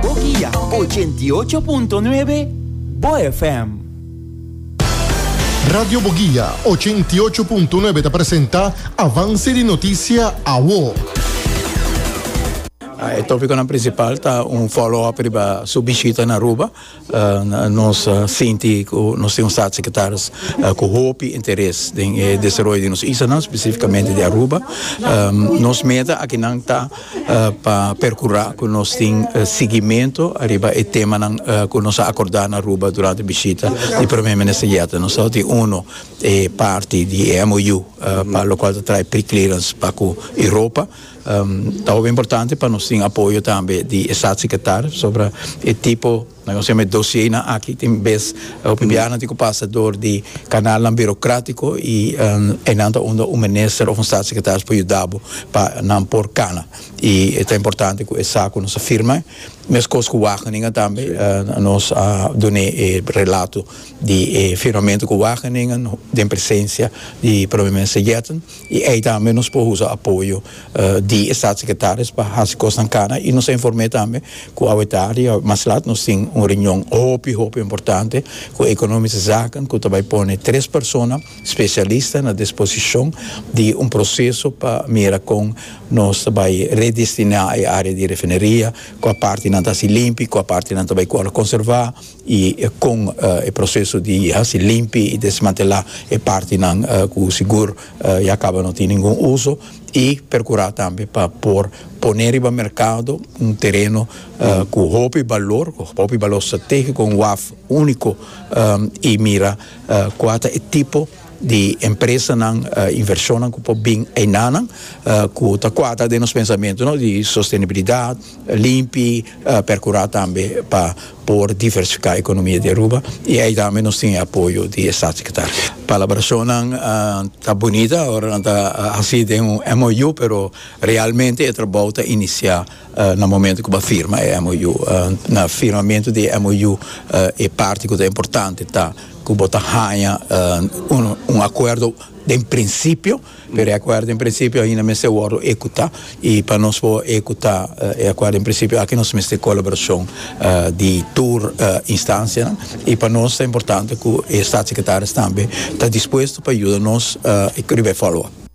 Boguia, ochenta i ocho punto nuebe, bo FM. Radio Boguia, ochenta i ocho punto nuebe ta presenta Avance di Noticia Awo. E tópikonan prinsipal ta un follow-up riba su bishita na Aruba. Nos sinti ku nos tin un statssekretaris ku hopi interes den e desaroyo di nos islanan, spesifikamente di Aruba. Nos meta akinan ta pa perkurá ku nos tin sigimentu ariba e temanan ku nos a akordá na Aruba durante bishita di Prome Minister Jette. Nos tabata tin unu e parti di e MOU pa lokual ta trae pre-clearance pa ku Europa. Ta hopi importante pa nos tin apoyo tambe di e Staatssecretaris sobra e tipo nan ku nos yama e dosienan aki tin bes hopi biahanan tin ku pasa dor di kanalnan birokratiko i einan ta unda un minister òf un Staatssecretaris por yuda bo pa nan por kana i ta importante ku e sa ku nos a firma meskos ku Wageningen tambe nos a dun'é e relato di e firmamentu ku Wageningen den presensia di Prome Minister Yetten. I ei tambe nos por usa apoyo di e Staatssecretaris pa haci cosnan cana i nos a informe tambe cu awe tardi awe mas laat nos tin un reunion hopi hopi importante cu Economische Zaken cu ta bay pone tres persona specialista na disposicion di un proceso pa mira con nos ta bay redestina e area di refineria cua partenan ta haci limpi cua partenan ta bay cual conserva. y con e proceso di haci limpi y desmantela e partinan cu sigur ya caba no tin ningun uso y percura tambe pa por pone riba mercado un tereno cu hopi balor cu hopi balor strategico un waf unico y mira cua ta e tipo di empresanan, invershonnan ku por bin einan nan ku ta kuadra den nos pensamentu no di sostenibilidat, limpi, perkurá tambe pa por diversifiká ekonomia di Aruba i ei tambe nos tin e apoyo di e Statssekretari. Palabrashonnan ta bunita, ora nan ta hasi den un MOU pero realmente e trabou ta inisiá. Na momento cu bo firma e MOU, na firmamento di e MOU e parti cu ta importante ta cu bo ta haña un acuerdo den principio, pero e acuerdo den principio ainda mester wordo ecuta y pa nos por ecuta e acuerdo den principio aki nos mester colaboracion di tur instancianan y pa nos ta importante cu e Statsecretaris tambe ta dispuesto pa yuda nos riba e follow up.